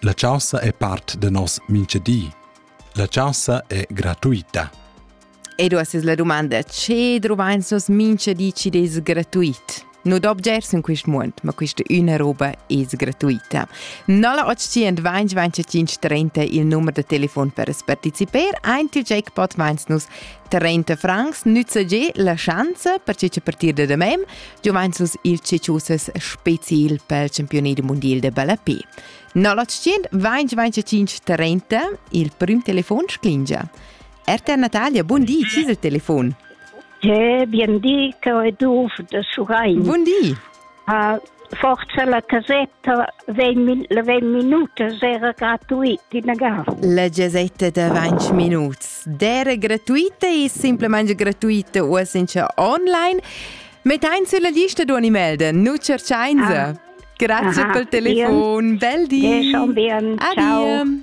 La chaussa è part da nos mincha di. La chaussa è gratuita. E du es la domanda che druvains nos mincha di chi des gratuit? No d'obgers in quist muond, ma quista üna roba es gratuita. 0825 25 30 il numer da telefon per partecipar. Ein il jackpot vains nus 30 francs nüzzegé la schanza per che partir da demem Juventus il ceciusas special pel campioni du mondial de ballapé. 0800 2025 30 il prim telefon sclingia. RTR Natalia, bun di, ci il telefon? Che bien di, che è du de Surain. Bun di. Uh, forse la casetta vegn, vegn minutas era gratuit inagà. La casetta da 20 minuts era gratuita e semplicemente gratuita o senza online. Mettein sulla lista di animal non cercainza. Ah. Grazie ah, per il telefono. Bel dì. Adieu.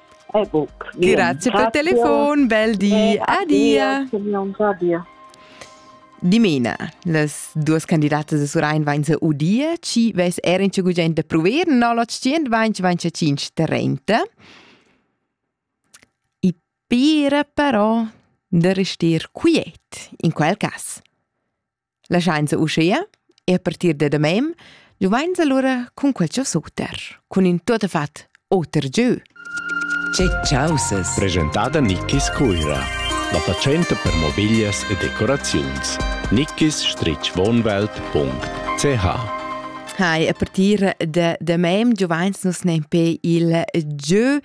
Grazie per il telefono, bel di, adia. Dimena, las duas candidatas da Surain vain se udia, ci ves er in gugent da prover, no l'otschient vain vain 530. I pira però da restar quiet, in quel cas. Laschainsa uschea, e a partir da damain, giuvainsa lura cun quel suter, cun in tuotta fat oter gieu. Che chausas! Presentada Nickis Cuira. La fatschenta per mobiglias e decoraziuns. nickis-wohnwelt.ch Hai, a partir da damain giuvains nus nempe il gieu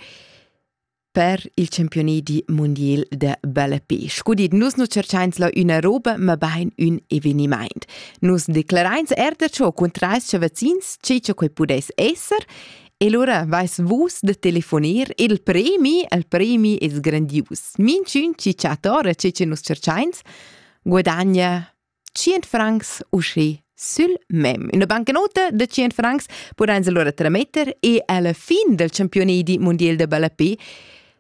per il campioni di mondial de belle pesce. Gudit, nus nu cerchains la üna roba, ma bain ün evenimaint. Nus declarains er da ciò cun trais chavazins, ce che quei pudeis esser, E allora vais vus da telefonir il premi, il premi es grandius. Minchün chi chatta ora ce che nus cerchains, guadagna 100 francs uschi sül mem. Üna bancnota da 100 francs pudain alura trametter e alla fin del championedi mondial da ballapé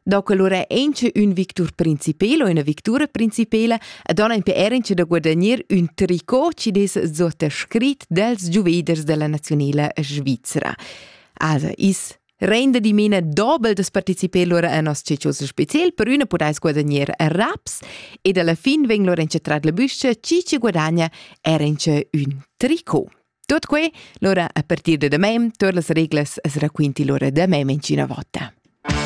do que lura auncha ün victur principel o üna victura principela e dona in PR incha da guadagnir ün tricot chi dess sottoscrit dels giuveders della nazionela svizra. Also, is Rende dimena dobel das participé lura a nos ciccius special per üna pudais guadagner a raps ed alla fin vegn lura incetrat la büscha chi ci guadagna era in ün tricot. Tot que, lura a partir da demem, todas las reglas as raquinti lura da mem in cina vota.